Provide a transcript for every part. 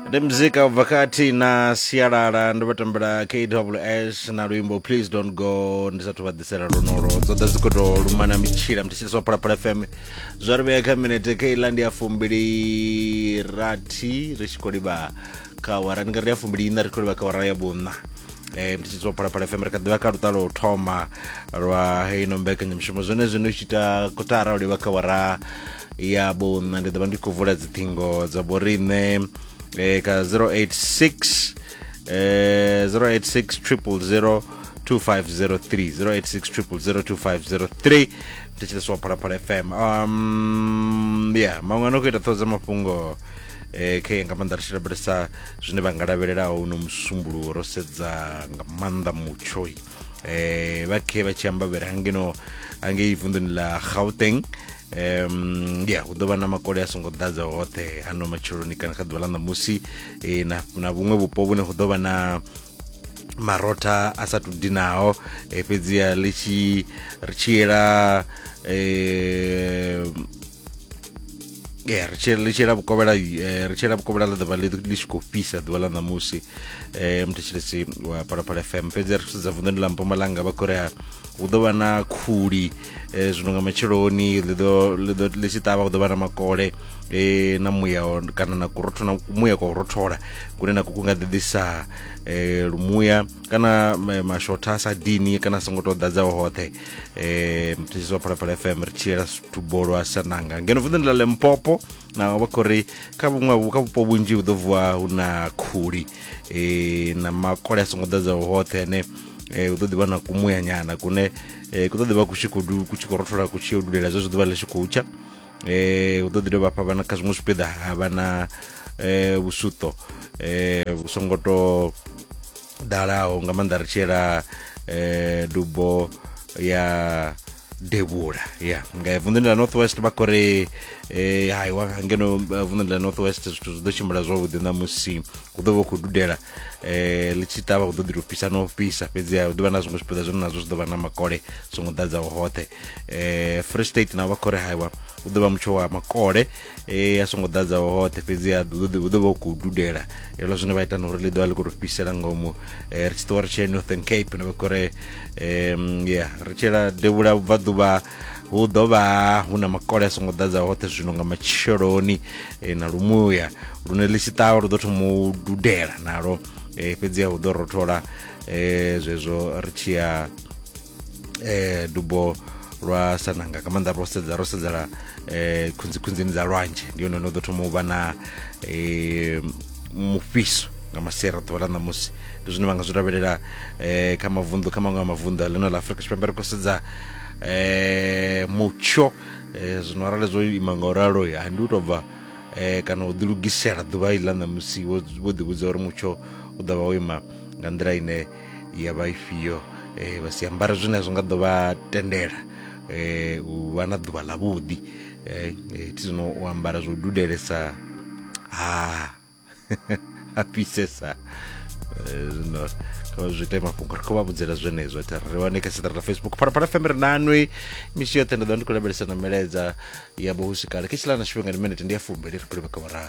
ndi muzika ubva kha thina sialala ndo vha tambela kws na luimbo please don't go ndi sathu vha ḓisela lonolo dzo ḓa dzi khou tou lumana mitshila mthetshelesa wa phalaphala fm zwa ri vhea kha minete keiḽa ndi ya fumbili rathi ri tshi khou livha kha wara ndi nga ri ya fumbili ina ri khou livha kha wara ya vhuṋa um tshitshidza phalaphala fm ri kha ḓivha kha lutalo u thoma lwa heino mbekanyamushumo zwone zwino u tshi ita kotara u livha kha wara ya vhuṋa ndi ḓo vha ndi khou vula dziṱhingo dza vhoriṋe um kha 086 eh 086 000 2503 086 000 2503 thetsheleswa phalaphala fm um ya maṅwe ano khou ita ṱhoho dza mafhungo eh khe nga maanḓa ri tshi lavhelesa zwine vha nga lavhelelaho uno musumbuluwo ro sedza nga maanḓa mutsho eh vha khe vha tshi ambavhela hangeno hangei vunḓuni ḽa gauteng um ya hu ḓo vha na makole a songo ḓadza hoṱhe hano matsheloni kana kha ḓuvha ḽa ṋamusi eh, na na vhuṅwe vhupo vhune hu ḓo vha na marotha a sa tou dinaho eh, fhedziha ḽi tshi ri tshi yela eh, ee ri tshi ri tshila vhukovhela eh, ri tshila vhukovhela ḽa ḓuvha ḽi ḽi tshi khou fhisa ḓuvha ḽa ṋamusi eh, um muthetshelesi wa phalaphala fm fhedzi ri sedza vunḓuni ḽa mpumalanga vha khou ri ha hu ḓo vha na khuli eh, zwino nga matsheloni ḽi ḓo ḽi ḓo ḽi tshi ṱavha hu ḓo vha na makole eh, na muya wa- kana na kurotho na muya kwa u rothola kune na kuku nga ḓiḓisa eh, lumuya kana ma- mashotha a sa dini kana a songo tou ḓadzaho hoṱhe eh mutshisi wa phalaphala fm ri tshiyela tubolo a sananga ngeno vunḓuni ḽa lempopo na vha khou ri kha vhuṅwe vhu- kha vhupo vhunzhi hu ḓo vuwa hu na khuli eh na makole a songo ḓadzaho hoṱhe ane eh hu ḓo ḓi vha na kumuyanyana kune eh ku ḓo ḓi vha ku tshi khou du- ku tshi khou rothola ku tshi yo dulela zwezwo ḓuvha ḽi tshi khou tsha eh hu ḓo ḓi dovha hafha vha na kha zwiṅwe zwipiḓa ha vha na eh vhusuṱo eh vhu songo tou ḓalaho nga maanḓa ri tshi yela eh, dubo ya devhula ya nga vunḓuni ḽa north west vha khori eh, hai wa ngeno eh, vunḓuni ḽa north west zwithu zwi ḓo tshimbila zwavhuḓi na musi hu ḓo vha khou dudela eh, ḽi tshi ṱavha hu ḓo ḓi to fhisa no fhisa fhedziha hu ḓovha na zwiṅwe zwipiḓa zwine nazwo zwi ḓo vha na makole songo ḓadzaho hoṱhe eh, free state na vha khori haiwa hu ḓo vha mutsho wa makole e a songo ḓadza hoṱhe fhedzi a ḓo ḓo vha khou dudela helo zwine vha ita na uri ḽi ḓovha ḽi khou tou fhisela ngomu ri tshi ṱuwa ri tshee northern cape na vha khou re um ya ri tshela devhula vhubvaḓuvha hu ḓo vha hu na makole a songo ḓadza hoṱhe zwino nga matsheloni na lumuya lune ḽi tshi ṱavha lu ḓo thoma u dudela nalo fhedziha hu ḓo rothola zwezwo ri tshi ya eh dubo lwa sananga ka maanḓa ro sedza ro sedzela eh khunzikhunzini dza lwanzhe ndi yone no ḓo thoma u vha na eh mufhiso nga masiari a ḓuvha ḽa ṋamusi ndi zwine vha nga zwi lavhelela eh kha mavunḓu kha maṅwe a mavunḓu a ḽino ḽa afurika tshipembe ri khou sedza eh mutsho eh zwino arali zwo ima nga u ralo ha ndi u tou bva eh kana u ḓilugisela ḓuvha iḽa ṋamusi wo wo ḓivhudza uri mutsho u ḓo vha wo ima nga nḓila ine ya vha ifhio eh, vha si ambara zwine zwi nga ḓo vha tendela eh, u vha na ḓuvha ḽavhuḓi eh, eh, thi zwino u ambara zwo dudelesa ha ah, a fhisesa eh, zwino kha zwi ite mafhungo ri khou vha vhudzela zwenezwo ita ri wane kha siṱara ḽa facebook phalaphala fm ri nanwi misi yoṱhe nda ḓo ndi khou lavhelesa na milaedza ya vho husikale khe tshilana tshifhinga ndi minete ndi ya fumbeli ri khou livha kha vhora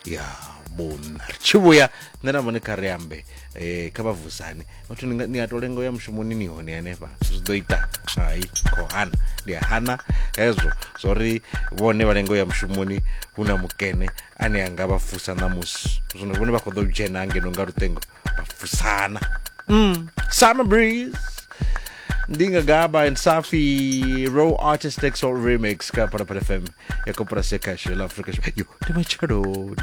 ya vhuna ri tshi vhuya nṋe na mone kha ri ambe eh kha vha vusane vhathu ni nga- ni a to lenga u ya mushumoni ni hone hanefha zwi ḓo ita hai kho hana ndi a hana hezwo zwori vhone vha lenga u ya mushumoni hu na mukene ane a nga vha fusa ṋamusi zwino vhone vha khou ḓo dzhena hangeno nga luṱengo vha fusana mm. summer breeze Ndinga Gaba and Safi Raw Artist X Remix Kapara Pala FM Yakopara Seka Shela Afrika Yo, ni machaloni